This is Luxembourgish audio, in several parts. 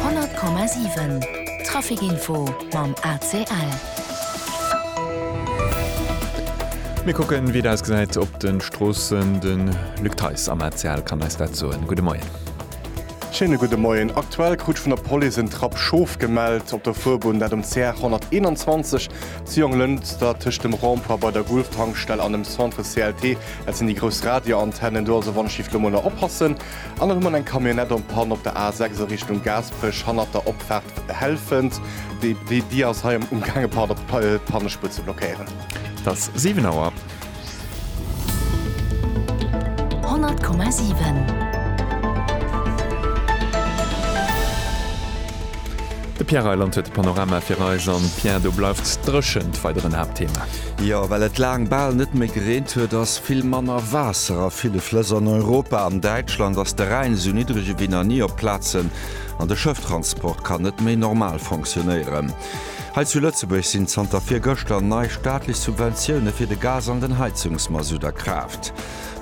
100,7 Trafic-Info mam ACL. Mir kucken wéi et ausgesäit op de Stroossen. De Luc Theis am ACL kann eis dat soen. Gudde Moien. Schéine gudde Moien. Aktuell krut vun der Police en Trapp Schof gemellt op der Fuerbunn, dat um CR 121 zu Jonglënster tëscht dem Rond-point bei der Gulf-Tankstell an dem Centre CLT. Dat sinn déi grouss Radioantennen do. Also wann, schifft elo mol nach oppassen. An erëm huet eng Camionnette en panne op der A6 a Richtung Gaasperech, hannert der Opfaart Helfent. Déi ass hei um Gaang e Panne d'Pannespuer ze blockéieren. Et ass 7 Auer. 100,7. De Pierre Reyland huet de Panorama fir eis. An Pierre, do bleift dréchent weider en Haaptthema. Jo, well et laang bal net méi gereent huet, ass vill manner Waasser a ville Flëss an Europa. An Däitschland ass de Rhäin esou niddreg ewéi nach ni op Plazen an de Schëfftransport kann net méi normal fonctionéieren. Hei zu Lëtzebuerg sinn zanter virgëschter nei staatlech Subventioune fir de Gas an den Heizungsmasutt a Kraaft.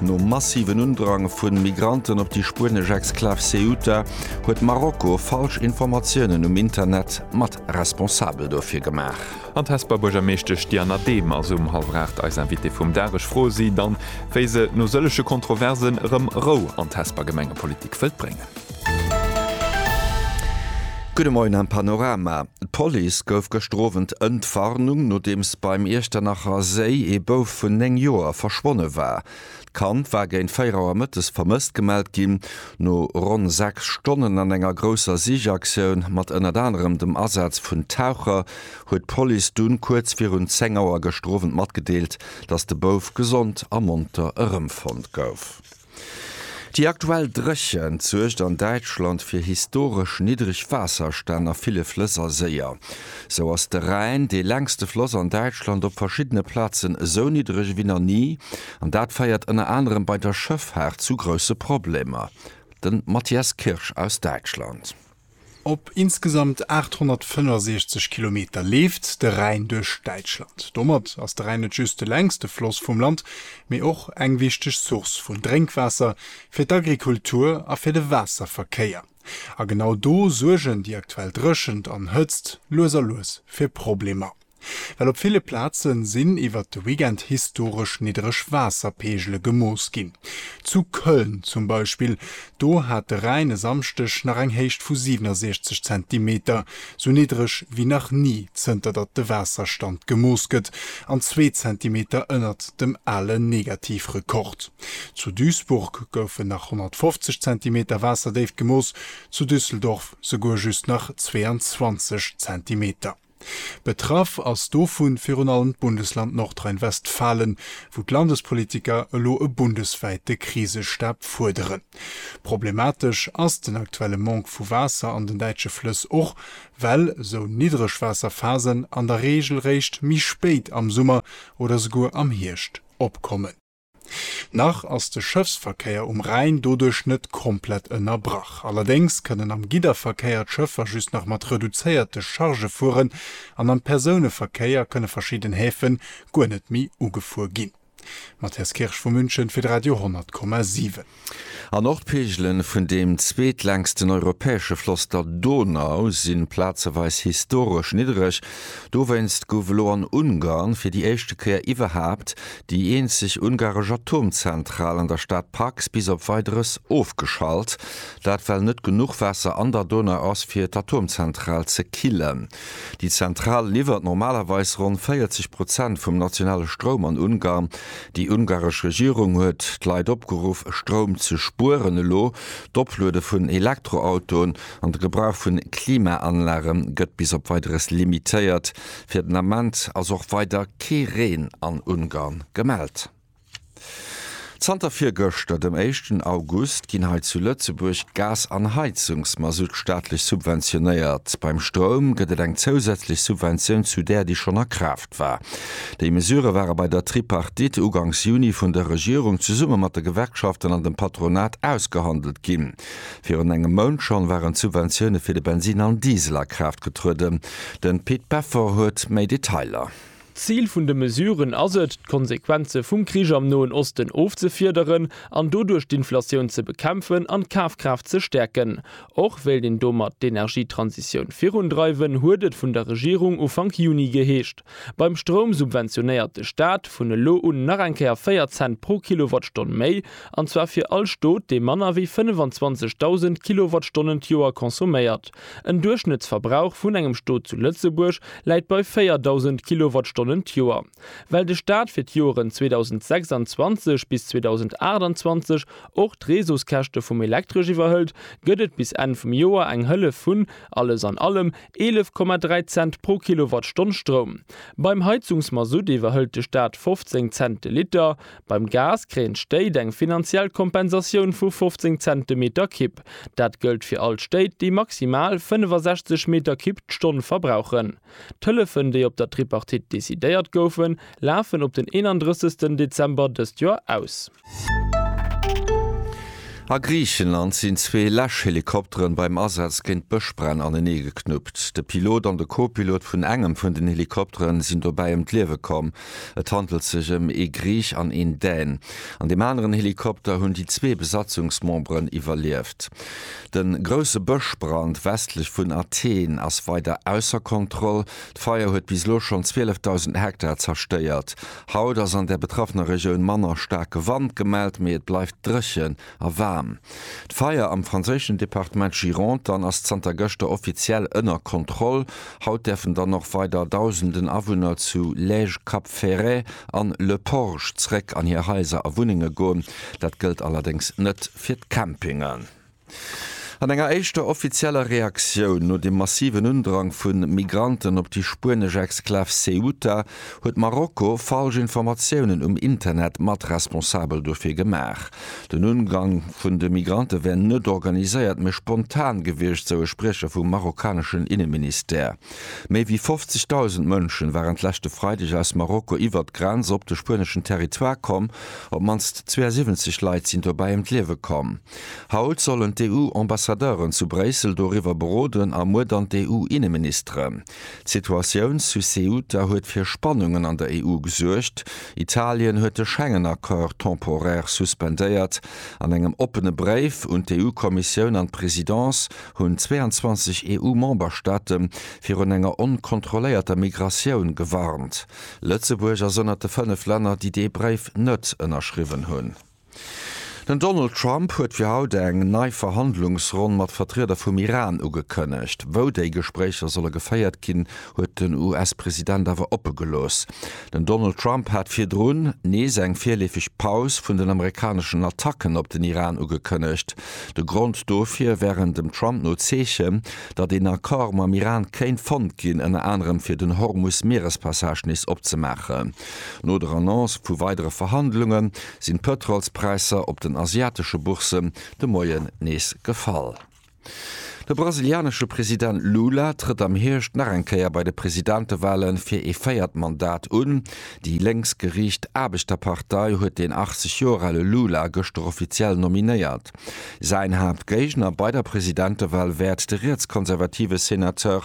Nom massiven Undrang vu Migranten op déi spuenesch Exklav Ceuta huet Marokko falsch Informatiounen um Internet mat responsabel dofir gemaach. An d'Hesper Buergermeeschtesch Diana Dehm ass um hallwer 8 eis Invitée vum Dag. Ech froe si dann, wéi se no sëllege Kontroversen erëm Rou an d'Hesper Gemengepolitik wëllt bréngen. Gudde Moien am Panorama. D'Police gouf gëschter Owend Ëntwarnung, nodeems beim Iechternacher Séi ee Bouf vun 9 Joer verschwonne war. D'Kand war géint 4 Auer mëttes vermësst gemellt ginn. No ronn 6 Stonnen an enger grousser Sichaktioun mat ënnert anerem dem Asaz vun Taucher huet d'Police dunn kuerz virun 10 Auer geschterowend matgedeelt, dass de Bouf gesond a monter erëmfonnt gouf. Déi aktuell Dréchent suergt an Däitschland fir historesch niddreg Waasserstänn a ville Flëss a Séier. Sou ass de Rhäin, dee längste Floss an Däitschland, op verschiddene Plazen esou niddreg ewéi nach ni, an dat féiert ënner anerem bei der Schëffaart zu grousse Problemer. Den Matthias Kirsch aus Däitschland. Op insgesamt 865 Kilometer leeft de Rhäin duerch Däitschland. Domat ass de Rhäin net just de längste Floss vum Land, mee och eng wichteg Source vun Drénkwaasser fir d'Agrikultur a fir de Waasserverkéier. A genau do suergen déi aktuell Dréchent an Hëtzt lues a lues fir Problemer. Well op ville Plaze sinn iwwert de Weekend historesch niddreg Waasserpeegele gemooss ginn. Zu Köln zum Beispill, do hat de Rhäin e Samschdeg nach eng Héicht vu 67 Zentimeter, sou niddreg wéi nach ni zënter datt de Waasserstand gemooss gëtt, an zwee Zentimeter ënnert dem ale Negativrekord. Zu Duisburg goufen nach 150 Zentimeter Waasserdéift gemooss, zu Düsseldorf souguer just nach 22 Zentimeter. Betraff ass dovu virun allem d'Bundesland Nordrhein-Westfalen, wou d'Landespolitiker elo e bundeswäite Krisestab fuerderen. Problematesch ass den aktuelle Manque vu Waasser an den däitsche Flëss och, well sou Niddregwaasserphasen an der Reegel réischt méi spéit am Summer oder souguer am Hierscht opkommen. Nach ass de Schëffsverkéier um Rhäin doduerch net komplett ënnerbrach. Allerdéngs kënnen am Gidderverkéier d'Schëffer just nach mat reduzéierte Charge fueren an am Persouneverkéier kënne verschidden Häfen guer net méi ugefuer ginn. Matthias Kirsch vu München fir d'Radio 100,7. An och d'Peegele vun deem zweetlängsten europäesche Floss, der Donau, si plazeweis historesch niddereg. Dowéinst gouf elo an Ungarn fir déi éischte Kéier iwwerhaapt déi eenzeg ungaresch Atomzentral an der Stad Paks bis op Weideres ofgeschalt. Dat well net genuch Waasser an der Donau ass, fir d'Atomzentral ze killen. Déi Zentral liwwert normalerweis ronn 40 Prozent vum nationale Stroum an Ungarn. Déi ungaresch Regierung huet d'Leit opgeruff, Stroum ze spueren. Elo d'Opluede vun Elektroautoen an de Gebrauch vun Klimaanlage gëtt bis op Weideres limitéiert. Fir den Ament ass och weider kee Reen an Ungarn gemellt. Zanter virgëschter, dem éischten August, ginn hei zu Lëtzebuerg Gas an Heizungsmasutt staatlech subventionéiert. Beim Stroum gëtt et eng zousätzlech Subventioun zu där, déi schonn a Kraaft war. Déi Mesurë ware bei der Tripartite uganks Juni vun der Regierung zesumme mat de Gewerkschaften an dem Patronat ausgehandelt ginn. Virun engem Mount schonn waren d'Subventioune fir de Bensin an Diesel a Kraaft getrueden. Den Pit Peffer huet méi Detailer. D'Zil vun de Mesuren ass et, d'Konsequenze vum Krich am Noen Osten ofzefiederen an doduerch d'Inflatioun ze bekämpfen an d'Kafkraaft ze stäerken. Och wéilt een domat d'Energietransitioun virundreiwen, huet et vun der Regierung Ufank Juni geheescht. Beim Stroum subventionéiert de Staat vun elo un nach eng Kéier 4 Cent pro Kilowattstonn méi, an zwar fir all Stot, dee manner wéi 25.000 Kilowattstonnen d'Joer consomméiert. En Duerchschnëttsverbrauch vun engem Stot zu Lëtzebuerg läit bei 4.000 Kilowattstonnen d'Joer. Well de Staat fir d'Joeren 2026 bis 2028 och d'Reseauskäschte vum Elektresch iwwerhëlt, gëtt et bis Enn vum Joer eng Hëllef vun, alles an allem, 11,3 Cent pro Kilowattstonn Stroum. Beim Heizungsmasutt iwwerhëlt de Staat 15 Cent de Liter. Beim Gas kréien d'Stéit eng finanziell Kompensatioun vu 15 Cent de Meter Kibb. Dat gëllt fir all d'Stéit, déi maximal 65 Meter Kibb d'Stonn verbrauchen. D'Hëllefen, déi op der Tripartite decidéiert goufen, lafen op den 31 Dezember dëst Joer aus. A Griichenland sinn zwee Läschhelikopteren beim Asaz géint Bëschbränn aneneegeknuppt. De Pilot an de Co-Pilot vun engem vun den Helikopteren sinn dobäi ëm d'Liewe komm. Et handelt sech ëm ee Griich an een Dän. An deem aneren Helikopter hunn déi zwee Besatzungsmemberen iwwerlieft. De grousse Bëschbrand westlech vun Athen ass weider ausser Kontroll. D'Feier huet bis elo schonn 12.000 Hektar zerstéiert. Haut ass an der betraffener Regioun manner staarke Wand gemellt, mee et bleift dréchen. a waarm. D'Feier am franséischen Departement Gironde dann ass zanter gëschter offiziell ënner Kontroll. Haut däerfen dann och weider Dausenden Awunner zu Lège, Cap Ferret an Le Porge zréck an hir Haiser a Wunnenge goen. Dat gëllt allerdéngs net fir d'Campingen. An enger éischter offizieller Reaktioun no dem massiven Undrang vu Migranten op déi spuenesch Exklav Ceuta, huet Marokko falsch Informatiounen um Internet mat responsabel dofir gemaach. Den Ungang vun de Migrante wär net organiséiert, mee spontan gewiescht, sou e Spriecher vum marokkaneschen Inneministère. Méi wéi 50.000 Mënschen waren d'leschte Freideg aus Marokko iwwert d'Grenz op de spueneschen Territoire komm. Op mannst 72 Leit sinn dobäi ëm d'Liewe komm. Haut sollen d'EU-Ambassadeuren zu Bréissel doriwwer beroden a muer dann d'EU-Inneministeren. D'Situatioun zu Ceuta huet fir Spannungen an der EU gesuergt. Italien huet de Schengen-Accord temporaire suspendéiert. An engem oppene Bréif un d'EU-Kommissioun an d'Presidence hunn 22 EU-Memberstaate virun enger onkontrolléierter Migratioun gewarnt. Lëtzebuerg ass ënnert de fënnef Länner, déi dee Bréif net ënnerschriwwen hunn. Den Donald Trump huet fir haut eng nei Verhandlungsronn mat Vertrieder vum Iran ugekënnegt. Wou déi Gespréicher solle geféiert ginn, huet den US-President awer oppe gelooss. Den Donald Trump hat virdrun nees eng virleefeg Paus vun den amerikaneschen Attacken op den Iran ugekënnegt. De Grond dofir wären dem Trump no Zeechen, datt een Accord mam Iran kéint fonnt ginn, ënner anerem fir den Hormus-Mierespassage nees opzemaachen. No der Annonce vu weidere Verhandlunge sinn d'Pëtrolspräisser op den asiatesche Bourssen de Moien nees gefall. De brasilianesche President Lula trëtt am Hierscht nach eng Kéier bei de Presidentewale fir ee véiert Mandat un. Déi lénks geriicht Aarbechterpartei huet den 80 Joer ale Lula gëschter offiziell nominéiert. Säin Haaptgéigner bei der Presidentewal wäert de rietskonservative Senateur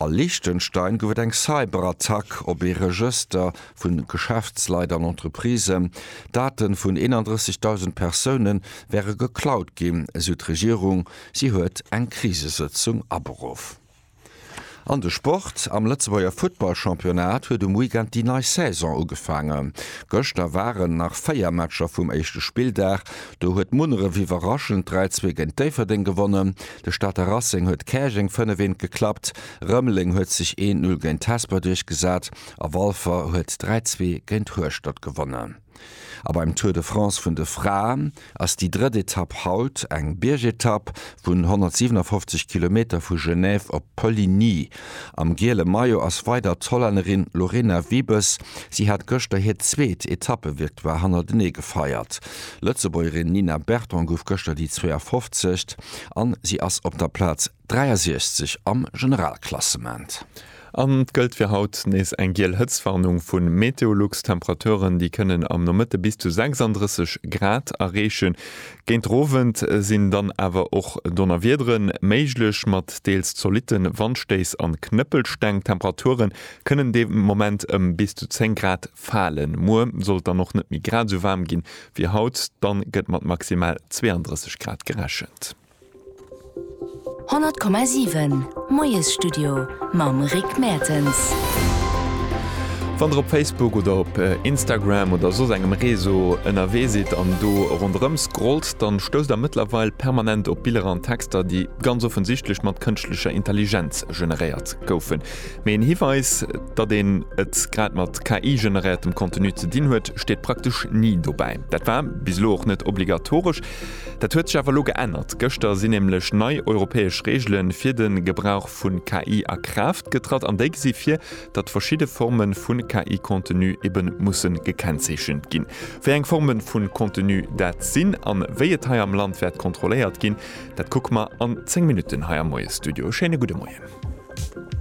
A Liechtenstein gouf et eng Cyberattack op ee Regëster vu Geschäftsleit an Entreprisen. D'Date vun 31.000 Persoune wäre geklaut ginn, esou d'Regierung. Si huet eng Krisesëtzung aberuff. An de Sport, Am Lëtzebuerger Futtballchampionnat huet um Weekend déi nei Saison ugefaangen. Gëschter waren nach 4 Matcher vum éischte Spilldag. Do huet Munneref iwwerraschend 3, 2 géint Déifferdeng gewonnen. De Stater Racing huet Käerjeng 5 eent geklappt, Rëmeleng huet sech 1 Null géint d'Hesper duerchgesat a Walfer huet 3 Zwee géint Hueschtert gewonnen. A beim Tour de France vun de Fraen ass déi drëtt Etapp haut eng Biergetapp vun 157 Kilometer vu Genève op Poligny. Am giele Maillot ass weider d'Hollännerin Lorena Wiebes. Si hat gëschter hiert zweet Etappe-Victoire hannertenee gefeiert. D'Lëtzebuergerin Nina Berton gouf gëschter déi 52. a si ass op der Plaz 63 am Generalklassement. An et gëllt fir haut nees eng giel Hëtztwarnung vu Meteolux. D'Temperaturen, déi kënnen am Nomëtte bis zu 36 Grad erreechen, Géint den Owend sinn dann awer och Donnerwiedere méiglech, mat deels zolitte Wandstéiss an Knëppelsteng. D'Temperature kënnen de Moment ëm bis zu 10 Grad falen. Muer soll et dann och net méi grad esou waarm gi wéi haut, dann gëtt mat maximal 32 Grad gerechent. 100,7 Moiesstudio mam Rick Mertens. Wann der op Facebook oder op Instagram oder soss engem Reseau ënnerwee sidd an do ronderëm scrollt, dann stousst der mëttlerweil permanent op Biller an Texter, déi ganz offensichtlech mat kënschtlecher Intelligenz generéiert goufen. Mee een Hiweis, datt een et grad mat KI-generéiertem Contenu ze dinn huet, steet praktesch ni dobäi. Dat war bis elo och net obligatoresch. Dat huet sech awer elo geännert. Gëschter sinn nämlech nei europäesch Reegele fir de Gebrauch vu KI a Kraaft getratt an déi gesi vir, datt verschidde Forme vu KI-Contenu ebe musse gekennzeechent ginn. Wéi eng Forme vu Contenu dat sinn a wéi et hei am Land wäert kontrolléiert ginn, dat kucke mer an 10 Minutten hei am Moiesstudio. E schéine gudde Moien.